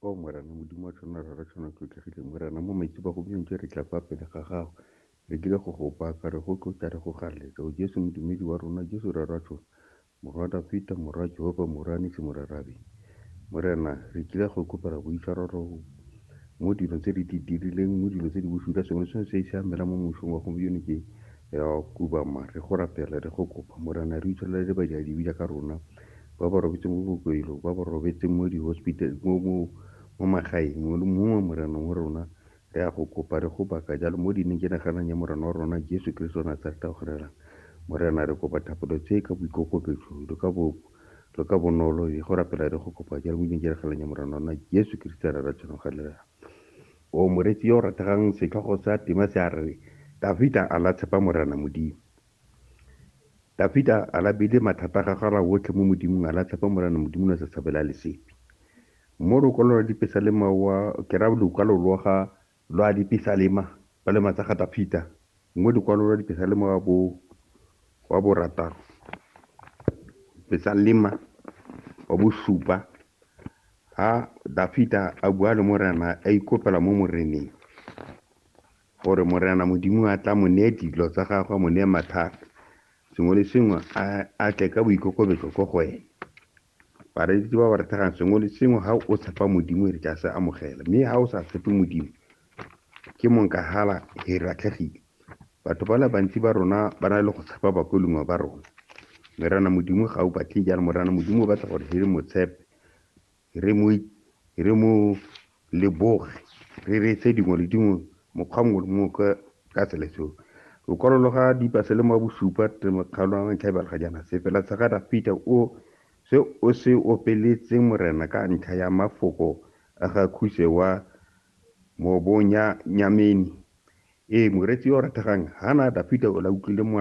o morena modimo wa tshwana rara tshwana tlotlhegileng morena mo maitse ba go bjong re tla fa pele ga gago re dile go go baka re go tlotla re go galetsa o jesu modumedi wa rona jesu rara tshwana morwa dafita morwa jehova morane se morarabe morena re kile go kopela boitshwaro ro mo dilo tse di dirileng mo dilo tse di bosula sengwe se se se amela mo mosong wa go bjone ke ya kubama re go rapela re go kopa morena re itshwelele le badiadi bila ka rona ba ba robetse mo bokokelong, ba ba robetse mo di-hospital, mo magaeng, mongwe le mongwe wa Morena wa rona re a go kopa, re go baka jalo mo dineng, ke naganang ya Morena wa rona Jesu Keresete wa Nasareta o kgonelang. Morena, re kopa thapelo tse ka boikokobetso le ka bo, le ka bonolo, re go rapela re go kopa jalo mo dineng, ke naganang ya Morena wa rona Jesu Keresete ra ra tshwanang kgonelang. O moreetsi yo o rategang, setlhogo sa tema se a re, Dafita a la tshepa Morena Modimo. Dafida a labile mathata a gagwe a ra otlhe mo Modimong, a latlha fa Morena Modimo na sa tshabela lesepi. Mo lokwalo lwa Dipesalema wa, ke ra lokwalo lwa ga lwa Dipesalema, palema tsa ga Dafida, mo lokwalo lwa Dipesalema wa bo wa borataro, Pesalema wa bosupa, ha Dafida a bua le Morena, a ikopela mo Moreneng. Gore Morena Modimo a tla mo neye dilo tsa gagwe, a mo neye mathata, sengwe le sengwe, a, a tle ka boikokobetso ko go ene. Bareetsi ba ba re thegang, sengwe le sengwe, ha o tshepa Modimo, re tla se amogela. Mme ha o sa tshepe Modimo, ke monkahala, he re latlhegile. Batho ba le bantsi ba rona ba na le go tshepa bakolungwa ba rona. Morena Modimo ga o batle jalo. Morena Modimo o batla gore he re mo tshepe. re mo leboge, re reetse dingwe le dingwe mokgwa mongwe le mongwe ka ka tsela seo. Lokwalo lo ga Dipa se le mo bosupa te mokgalo wa ntlha ebale ga jaana se fela Sagada Peter o se o se opeletseng Morena ka ntlha ya mafoko a ga Khuse wa Mobonyanyameni. Ee, moreetsi yo o rategang Hanada Peter o la utlwile mola.